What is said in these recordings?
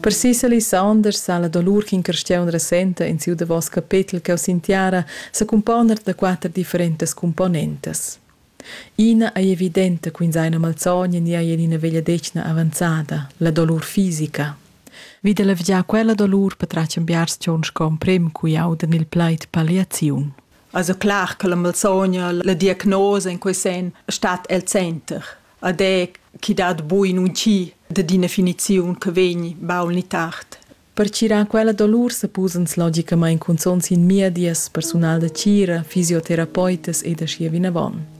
Per sis Elisanders sa la dolur ch'in carstiaun resenta en siu davos capetel cheu sin tiara secumponer da quater differentas cumponentas. Ina ei evidenta ch'ins ha ina malsogna ni ei en ina vegliadetgna avanzada, la dolur fisica. Vi da levgiar quella dolur patratg en biars tgauns sco emprem cui audan il plaid palliaziun. Also clar che la malsogna, la diagnosa in quei sen stat el center. ed è chi dat bu in un chi dad ina finiziun che vegn baul ni tard. Pertgirar quella dolur supposans logicamain cunzonts in miedias persunal da tgira, fisioterapeutas ed aschia vinavon.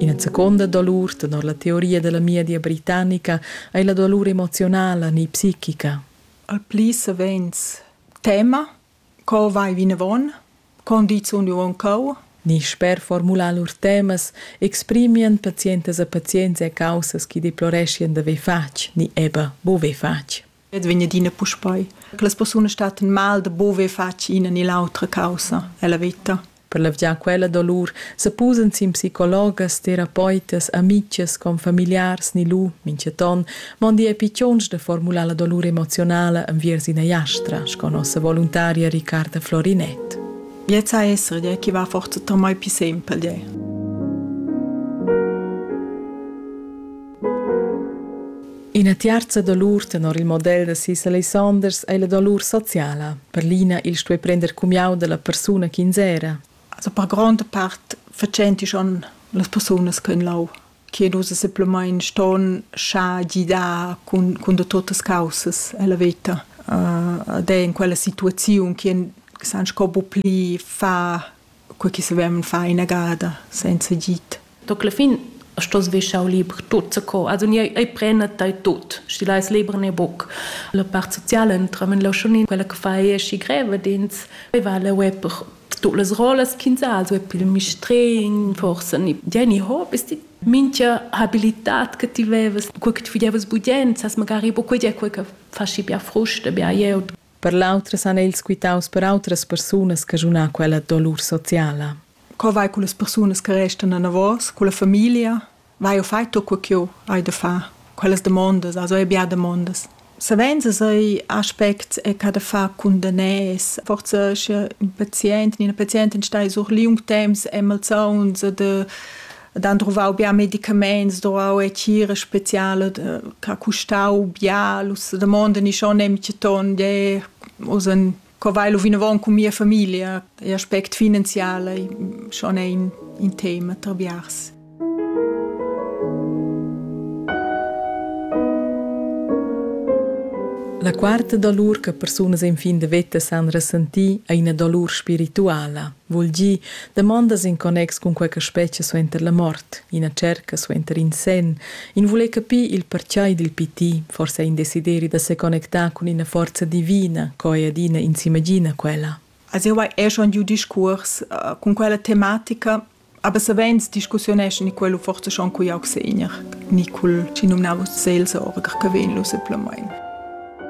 Ina seconda dolur, tenor la teoria della miedia britannica, è la dolur emozionala, ni psichica. Al pli savens tema Co vai vinavon? Con di sun jeu aunc Ni sper formular lur temas exprimian pazientas e pazienza caussas chi deploreschien d'haver fatg ni eber buver fatg. Ed vegn adina puspei che las persunas statten mal da buver fatg ina ni l'autra caussa ella veta. Per levgiar quella dolur sepusan sin psicologas, terapeutas, amitgs, confamiliars ni lu mintgaton mondi epitons da formular la dolur emozionala enviers ina jastra, sco nossa voluntaria Riccarda Florinett. Jetzt a essere der chi va forza tamai più sempre dir. Ina tiarza dolur tenor il model da sis Alessanders ei la dolur sociala. Per l'ina il stuer prender cumiau dalla persuna ch'ins era. Also per gronda part facenti schon las persunas ch'en lau che nus simpelmain ston scha gidar cun, cun tuttas causas alla veta uh, ed è in quella situaziun che san sco bu pli fa quel che savevan fare inagada senza git. Toc la fin stos vi schau liber tut co. Also ni ei prena tai tut, schi lais liber ne buc. La part sociala entra men la schon quella che fa è schi greve dins va la web per tu las rolas quinzal so per mistrin forse ni Jenny Hobbes die mincha habilitat che ti vevas quel che ti videvas budient, sas magari po quei è quel che fasci bia frusta, bia eu Per l'autras han els quitaus per autras persunas caschuna quella dolur sociala. Co vai con las persunas che restan anavos, con la famiglia? Vai o fai tu quel ch'eu hai da far? Quellas demondas, also ei bia demondas. Savens sai aspects e che da far cun daners. Forse sche in patient, una pazientin stai sur liung temps e malsauns de ed han druvau bia medicaments, druvau e cira speciala che ha custau bia, l'us damonda ni schon nemche ton, de us en co vai lu vinavon cun mia famiglia, l'aspect finanziale schon è in, in tema tra biars. La quarta dolur che persunas en fin de veta san ressentir è ina dolur spirituala. vul dir damondas in connex cun quei che spetga suenter la mort, ina cerca suenter in senn, in vuler capir il pertgei dil piti, forse in desideri da seconnectar cun ina forza divina co ei adina in s'imagina quella. Also jau hai er schon giu discurs uh, cun quella tematica, aber savens discussieneschen in quello forse schon cui augsegner, ni cul ci numnavo Seelsorger che venlo simplemente.